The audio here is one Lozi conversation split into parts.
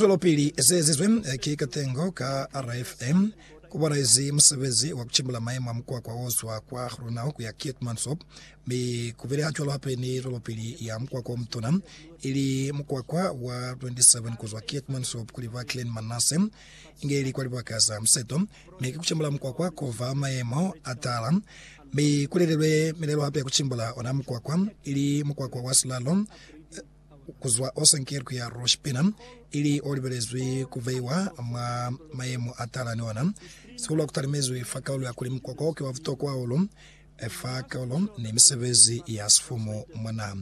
Zwelopili ze ezizwe ki Katengo ka RFA ku banaezi musebezi wa ku cimbula maemo a mukwakwa o zwa kwa Groenau ku ya Keetmanshoop, mi ku bile hacwalo hape ni zwelopili ya mukwakwa o mutuna, ili mukwakwa wa 27 ku zwa Keetmanshoop ku liba Klein Manasse, inge ili kwa libaka za museto, mi ki ku cimbula mukwakwa ko va maemo a taala. Mi ku lelelwe milelo hape ya ku cimbula ona mukwakwa, ili mukwakwa wa silalo. ku zwa o senkilwe ku ya Rosh Pina, ili o libelezwi ku veiwa mwa mayemo a tala ni ona. Sihulu a ku talimezwi fa kaulo ya kuli mukwa kwao ki wa butokwa hahulu fa kaulo ni misebezi ya sifumu mwa naha.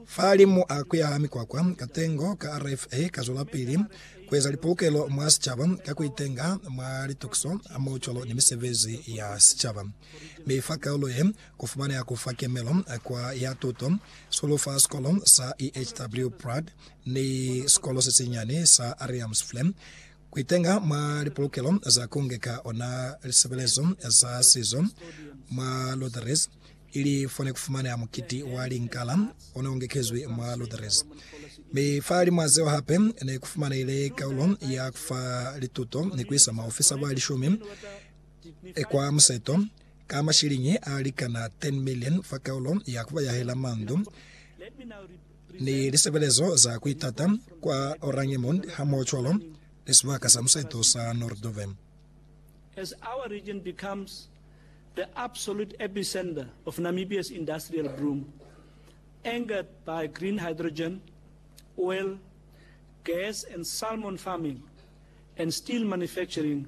Fahalimu a ku ya ha mikwakwa, katengo ka RFA ka zwelapili ku eza lipolokelo mwa sicaba ka ku itenga mwa litukiso hamoho cwalo ni misebezi ya sicaba. Mi fa kaulo ye, Kufumaneha kufa kemelo kwa ya tuto sulu fa sikolo sa EHW Prague ni sikolo sesinyani sa Ariamsflem kuitenga mwa lipolokelo za kungeka ona lisebelezo za sizo mwa Lutherese ili fone kufumaneha mukiti wa linkala one ongekezwi mwa Lutherese. Mi fa limwa zeo hape nekufumanehile kaulo ya kufa lituto ni kuisa maofisa ba lishumi Kwa museto, ka mashiliñi a likana 10 million fa kaulo ya ku yahela mandu ni lisebelezo za ku itata kwa Oranjemund hamohocwalo ni sibaka sa museto sa Noorddorp. As our region becomes the absolute epicentre of Namibia's industrial boom, anchored by green hydrogen, oil, gas and salmon farming, and steel manufacturing,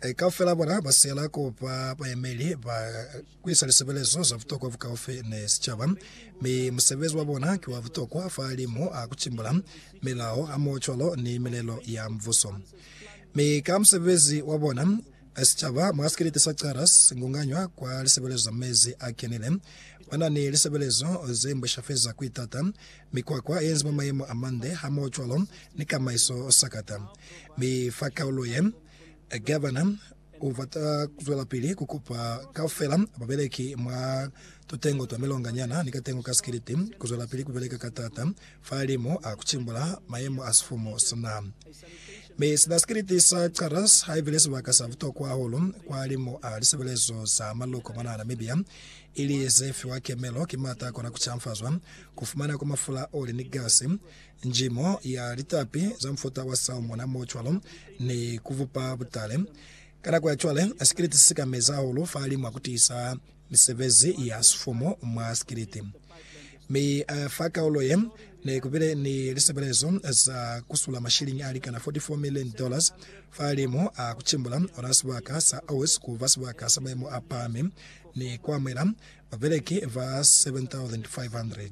Eka fela bona ba siyela kuba bayemeli ba kuisa lisebelezo za butokwa bukaufi ni sicaba, mi musebezi wa bona ki wa butokwa fahalimu a kutimbula milao hamoho cwalo ni milelo ya Mubuso. Mi ka musebezi wa bona, sicaba mwa sikeleti sa Qara singunganywa kwa lisebelezo za mezi a kenile. Bana ni lisebelezo ze mbwesha feza kuitata, mikwakwa yenzi mwa mayemo amande hamoho cwalo ni kamaiso sakata. Mi fa kaulo ye, Gavana u bata ku zwelapili ku kupa kaufela babeleki mwa tutengo twa milonga nyana ni katengo ka sikiliti ku zwelapili ku beleka ka taata fahalimu a ku cimbula mayemo a sifumu sina. Mi sina sikiliti sa Charters haibile sibaka sa butokwa hahulu kwahalimu a lisebelezo za maluko mwanaa Namibia, ili ze fiwa kemelo ki maata a kona ku canfazwa, ku fumana kwa mafula, oli ni gasi, Njimo ya litapi za mufuta wa salmona mo cwalo ni ku bupa butale. Ka nako ya cwale, sikiliti si ka meza hahulu fahalimu a ku tiisa misebezi ya sifumu mwa sikiliti. Mi fa kaulo ye, ne ku bile ni lisebelezo za ku sula mashiliñi a likana 44 milioni dollars fahalimu a ku cimbula ona sibaka sa Aus ku ba sibaka sa maimo a pahami ni ku amuhela babeleki ba 7,500.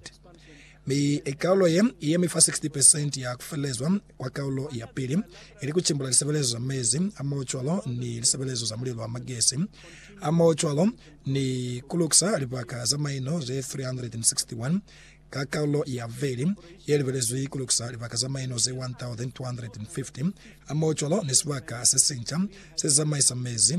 Mi kaulo ye yemi fa 60 percent ya kufelelezwa kwa kaulo ya pili, ili kucimbula lisebelezo za mezi, hamohocwalo ni lisebelezo za mulilo wa magesi, hamohocwalo ni kulukisa libaka za maino ze 361. Ka kaulo ya vubeli, ye libelezwi kulukisa libaka za maino ze 1,250, hamohocwalo ni sibaka sesinca sezamaisa mezi,